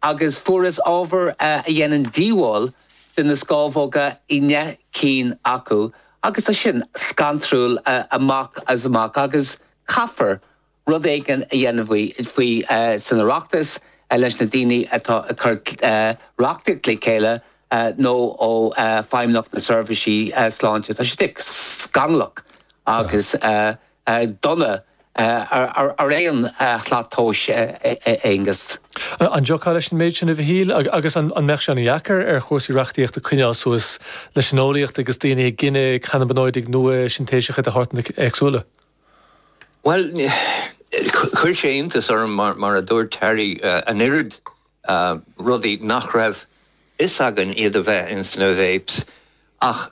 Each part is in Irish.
agus fuarthas ábhar a dhéanann díobháil do na scámhóga i ndeich gcinn acu agus tá sin scantrúil amach is amach agus caithfear rud éigin a dhéanamh faoi san Oireachtas leis na daoine atá ag cur reachtaíocht le chéile nó Feidhmeannacht na Seirbhísí Sláinte. Tá sé scannalach agus. dona ar aon slat tomhais, Aonghus. An dtiocfá leis an méid sin a Mhichíl agus an mbeadh sé an-deacair ar chúrsaí reachtaíochta coinneáil suas leis an eolaíocht agus daoine ag gineadh cannaibionóidigh nua sintéiseacha de shórtanna éagsúla? Bhuel, chuir sé iontas orm, mar a dúirt Terry, an oiread rudaí nach raibh fhios againn iad a bheith ins na vapes. Ach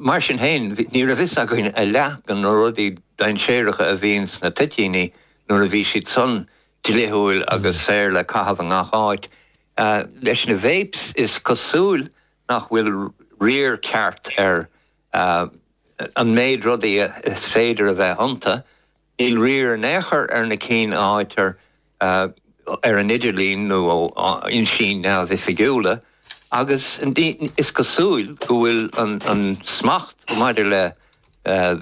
mar sin féin, ní raibh fhios againn a leath de na rudaí dainséaracha a bhíonn sna toitíní nuair a bhí siadsan dlíthiúil agus saor le caitheamh i ngach áit. Leis na vapes, is cosúil nach bhfuil riar ceart ar an méid rudaí is féidir a bheith iontu. Níl riar in aon chor ar na cinn a fhaightear ar an idirlíon nó ó fhoinsí neamhoifigiúla agus is cosúil go bhfuil an smacht maidir le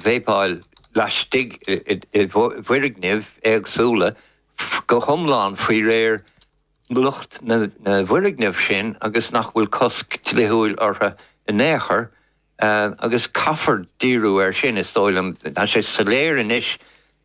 veipáil laistigh i bhfoirgnimh éagsúla go hiomlán faoi réir lucht na bhfoirgneamh sin agus nach bhfuil cosc dlíthiúil orthu in aon chor. agus caithfear díriú air sin, is dóigh liom. Tá sé soiléir anois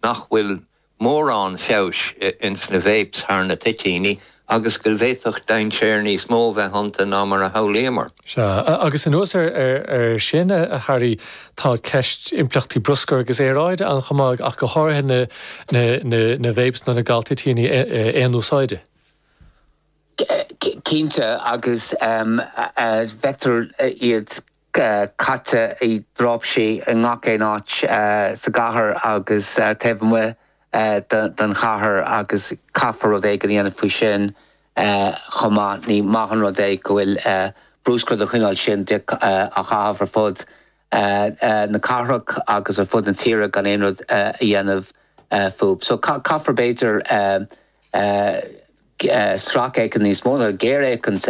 nach bhfuil mórán feabhais ins na 'vapes' thar na toitíní agus go bhféadfadh dainséar níos mó bheith iontu ná mar a shamhlaíomar. Sea, agus anuas air sin, a Terry, tá ceist impleachtaí bruscair agus aeráide ann chomh maith, ach go háirithe na 'vapes' nó na galtoitíní aon-úsáide. Cinnte, agus feictear iad caite i dtráipsí i ngach aon áit sa gcathair agus taobh amuigh den chathair agus caithfear rud éigin a dhéanamh faoi sin chomh maith. Ní maith an rud é go bhfuil bruscar den chineál sin á chaitheamh ar fud na cathrach agus ar fud na tíre gan aon rud a dhéanamh fúib. So caithfear b'fhéidir sracfhéachaint níos mó nó géarfhéachaint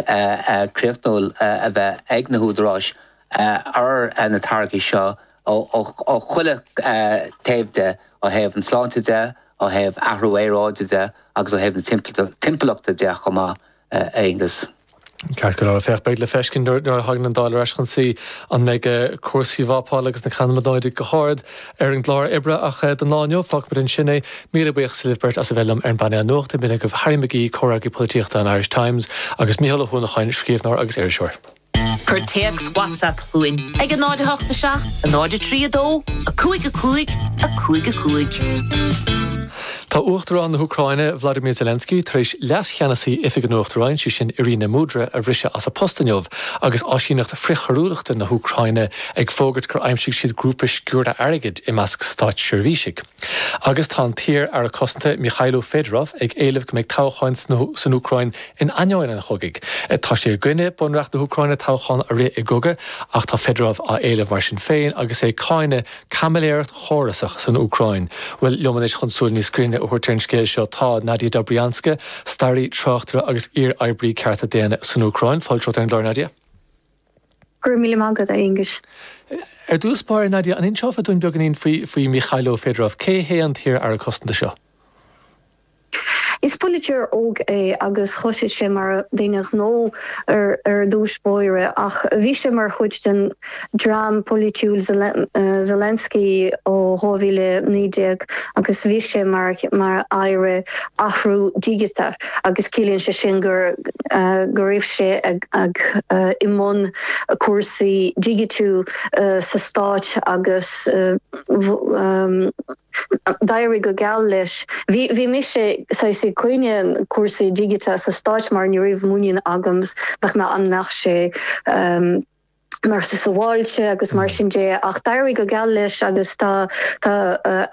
chríochnúil a bheith ag na húdaráis ar na táirgí seo ó chuile thaobh de, ó thaobh an tsláinte de, ó thaobh athrú aeráide de agus ó thaobh na timpeallachta de chomh maith, a Aonghus. Ceart go leor, féach, beidh le feiscint nuair a thagann an Dáil ar ais chun suí an mbeidh cúrsaí vápáil agus na cannaibionóidigh go hard ar an gclár oibre ach don lá inniu, fágfaimid ansin é. Míle buíochas libh beirt as a bheith liom ar an bpainéal nuachta. B'in agaibh Harry McGee, Comhfhreagraí Polaitíochta an Irish Times agus Mícheál Ó hUanacháin, Scríbhneoir agus Iriseoir. Cuir téacs WhatsApp chugainn ag a 0 8 7 a 0 3 2 5 5 5 5. Tá Uachtarán na hÚcráine, Vladimir Zelensky, tar éis Leas-Cheannasaí Oifig an Uachtaráin, sé sin Iryna Mudra, a bhriseadh as a post inniu agus Áisíneacht Frithchoiriúlachta na hÚcráine ag fógairt gur aimsigh siad grúpa sciúrtha airgid i measc státseirbhísigh. Agus tá an t-iar-Aire Cosanta, Mykhailo Fedorov, ag éileamh go mbeidh toghcháin san Úcráin in ainneoin an chogaidh. Tá sé i gcoinne Bunreacht na hÚcráine toghchán a rith i gcogadh ach tá Fedorov á éileamh mar sin féin agus é ag cáineadh caimiléireacht chórasach san Úcráin. Bhuel, liom anois chun súil níos grinne a thabhairt ar an scéal seo, tá Nadia Dobrianska, staraí, tráchtaire agus iar-oibrí cearta daonna san Úcráin, fáilte romhat ar an gclár, Nadia. Go raibh míle maith agat, a Aonghuis. Ar dtús báire, Nadia, an inseofá dúinn beagáinín faoi faoi Mykhailo Fedorov? Cé hé an t-iar-Aire Cosanta seo? Is polaiteoir óg é agus thosaigh sé mar dhuine gnó ar ar dtús báire ach bhí sé mar chuid den dream polaitiúil Zelensky ó 2019 agus bhí sé mar mar aire athrú digiteach agus ciallaíonn sé sin gur go raibh sé ag i mbun cúrsaí digitiú sa stáit agus D'éirigh go geal leis. Bhí bhí mise saghas i gcoinne cúrsaí digiteacha sa Stáit mar ní raibh muinín agam nach mbeadh an mbeadh sé mar sa sábháilte agus mar sin de ach d'éirigh go geal leis agus tá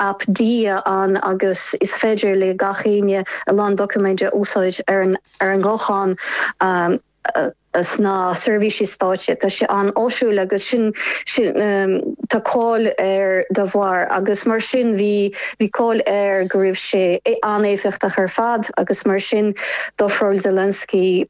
aip Diia ann agus is féidir le gach éinne a lán doiciméid a úsáid ar an ghuthán sna seirbhísí stáit. Tá sé an-áisiúil agus sin sin tá cáil air dá bharr agus mar sin bhí bhí cáil air go raibh sé an-éifeachtach ar fad agus mar sin d'ofráil Zelensky